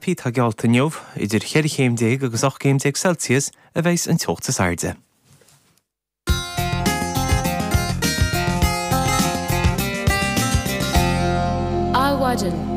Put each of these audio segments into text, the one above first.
tá geallta inniu, idir cheithre chéim déag agus ocht gcéim déag Celsius a bheidhs an teocht is airde. Adhmhaidin.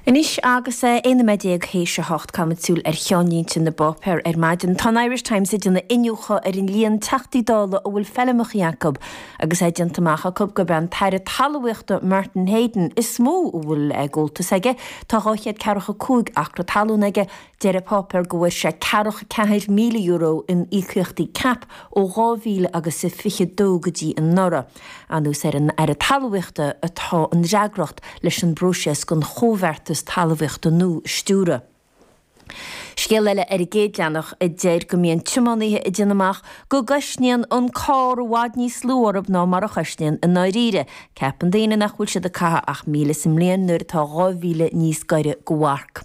Anois agus é 11 noiméad th'éis a hocht, caithimid súil ar cheannlínte na bpáipéar ar maidin. Tá an Irish Times ag déanamh iniúchadh ar an líon Teachtaí Dála a bhfuil feilmeacha acu, Agus é déanta amach acu gurb é an tAire Talmhaíochta Martin Heydon is mó a bhfuil gabháltas aige, tá 245 acra talún aige, deir an páipéar go bhfuair sé €44,000 in íocaíochtaí CAP ó 2022 go dtí anuraidh. Anuas ar an Aire Talmhaíochta atá an fhreagracht leis an bpróiseas don Chomhbheartas Talmhaíochta nua a stiúradh. Scéal eile ar an gcéad leathanach a deir go mbíonn tiománaithe ag déanamh amach go gcoisníonn an carr i bhfad níos lú orthu ná mar a choisníonn i ndáiríre. Ceapann daoine nach bhfuil siad ag caitheamh ach míle sa mbliain nuair atá dhá mhíle níos gaire don mharc.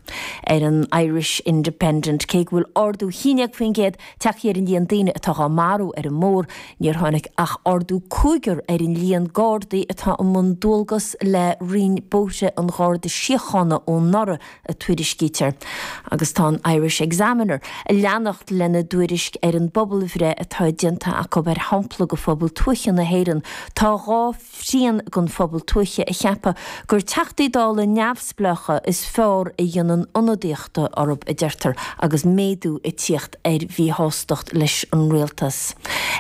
Ar an Irish Independent, cé go bhfuil ardú 11% tagtha ar an líon daoine atá dhá marú ar an mbóthar, níor tháinig ach ardú cúigear ar an líon Gardaí atá i mbun dualgas le Roinn Bóithre an Gharda Síochána ó anuraidh. a tuairiscítear, agus tá an Irish Examiner ag leanacht lena dtuairisc ar an bpobalbhreith atá déanta acu ar shampla de phobal tuaithe na hÉireann. Tá dhá thrian den phobal tuaithe ag ceapadh gur Teachtaí Dála neamhspleácha is fearr a dhéanann ionadaíocht orthu, a deirtear, agus méadú ag tíocht ar mhíshástacht leis an rialtas.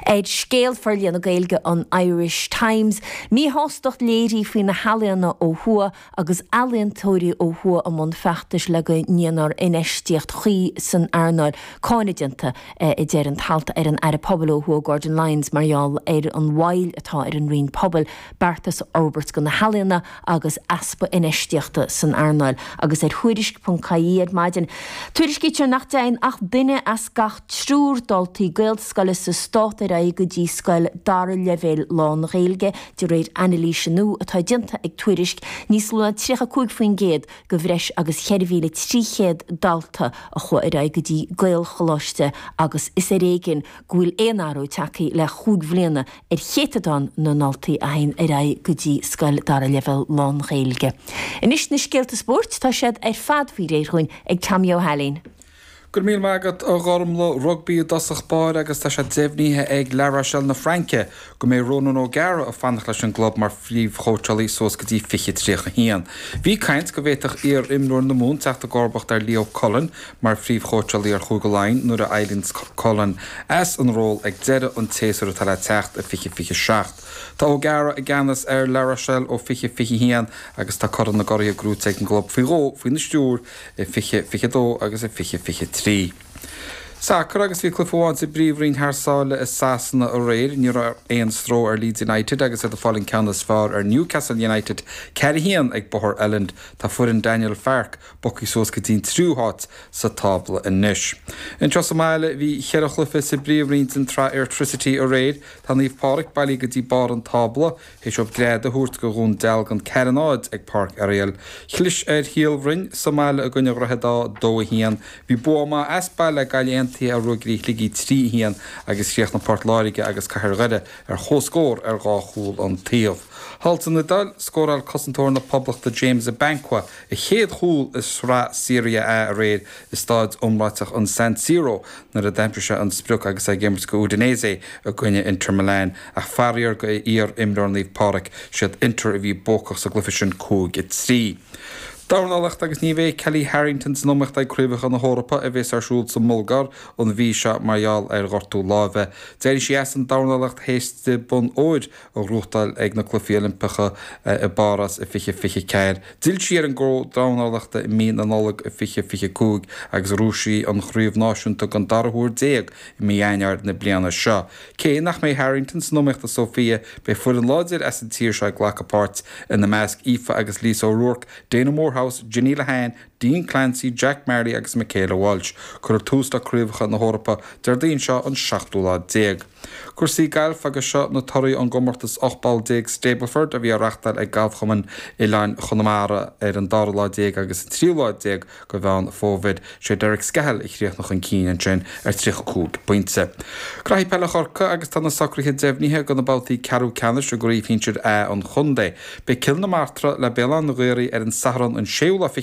Ar Scéal, forlíonadh Gaeilge an Irish Times, míshástacht léirithe faoi na healaíona ó thuaidh, agus ealaíontóirí ó thuaidh i mbun feachtais le go ndéanfar infheistíocht chuí san earnáil, cáineadh déanta, a deir an t-alt ar an Aire Pobail ó thuaidh Gordon Lyons mar gheall ar an mhoill atá ar an Roinn Pobail beartais a fhorbairt do na healaíona agus easpa infheistíochta san earnáil agus ar Thuairisc.ie ar maidin. Tuairiscítear nach dtéann ach duine as gach triúr daltaí gaelscoile sa stát ar aghaidh go dtí scoil dara leibhéal lán-Ghaeilge De réir anailíse nua atá déanta ag Tuairisc, níos lú ná 35% de bhreis agus 4,300 dalta a chuaigh ar aghaidh go dtí Gaelcholáiste agus is ar éigin go bhfuil aon athrú tagthaí le chúig bhliana ar chéatadán na ndaltaí a théanns ar aghaidh go dtí scoil dara leibhéal lán-Ghaeilge. Anois na scéalta spóirt, tá siad ar fad faoi réir dhúinn ag Tommy Ó hAilín. Go raibh míle maith agat a Ghormlaith Rugbaí i dtosach báire agus tá sé deimhníthe ag La Rochelle na Fraince go mbeidh Ronan O'Gara ag fanacht leis an gclub mar phríomhchóitseálaí suas go dtí 2031. Bhí caint go bhféadfadh iar-imreoir na Mumhan teacht i gcomharbacht ar Leo Cullen mar phríomhchóitseálaí ar Chúige Laighean nuair a éiríonns Cullen as an ról ag deireadh an tséasúir atá le teacht i 2027. Tá O'Gara i gceannas ar La Rochelle ó 2021 agus tá Corn na gCuradh gnóite ag an gclub faoi dhó faoina stiúr i 2022 agus i 2023. Sacar agus bhí cluiche amháin sa bpríomhroinn thar sáile i Sasana aréir. Ní raibh aon stró ar Leeds United agus iad ag fáil an ceann is fearr ar Newcastle United, 4 1, ag Bóthar Elland. Tá foireann Daniel Farke bogtha suas go dtí'n triú háit sa tábla anois. Anseo sa mbaile bhí cheithre chluiche sa bpríomhroinn den tsraith Airtricity aréir. Tá Naomh Pádraic bailithe go dtí barr an tábla. Théis dóibh greadadh a thabhairt go Dhún Dealgan ceathair náid ag Páirc Oriel. Chlis ar Shíol Bhroin sa mbaile i gcoinne Dhroichead Átha, dó a haon. Bhí bua maith as baile ag Gaillimh Aontaithe ar Ruagairí Shligigh trí a haon agus chríochnaigh Port Láirge agus Cathair Dhoire ar chomhscór ar dhá chúl an taobh. Thall san Iodáil scóráil cosantóir na Poblachta James Abankwah a chéad chúl i Sraith Serie A aréir i stáid iomráiteach an San Siro. nuair a d'aimsigh sé an sprioc agus é ag imirt go Udinese i gcoinne Inter Milan, ach faraor go iar-imreoir Naomh Pádraic, siad Inter a bhí buacach sa gcluiche sin 5, 3. Dornálacht agus ní bheidh Kellie Harrington san iomaíocht ag Craobhacha na hEorpa a bheas ar siúl sa mBulgáir an mhí seo mar gheall ar ghortú láimhe. D'éirigh sí as an dornálacht théis di bonn óir a a ghnóchtáil ag na Cluichí Oilimpeacha i bPárás i 2024. D'fhill sí ar an gcró dornálachta i mí na Nollag 2025 agus ghnóthaigh sí an chraobh náisiúnta den dara huair déag i mí Eanáir na bliana seo. Cé nach mbeidh Harrington san iomaíocht i Sóifia, beidh foireann láidir as an tír seo ag glacadh páirt, ina measc Aoife agus Lisa O'Rourke, Daina Moorehouse, Jenny Lehane, Dean Clancy, Jack Marley agus Michaela Walsh. Cuirfear tús le Craobhacha na hEorpa Déardaoin seo an seachtú lá déag. Cúrsaí Gailf agus seo na torthaí ón gcomórtas 18 bpoll Stableford a bhí á reachtáil ag Galfchumann Oileáin Chonamara ar an dara lá déag agus an tríú lá déag go Mheán Fómhair. Sé Derek Scahill a chríochnaigh chun cinn ansin ar 35 bpointe. Gnaithí Peile Chorcaí agus tá na socraithe deimhnithe do na babhtaí ceathrú ceannais i gCraobh Shinsir A an Chontae. Beidh Cill na Martra le Béal Átha an Ghaorthaidh ar an Satharn an séú lá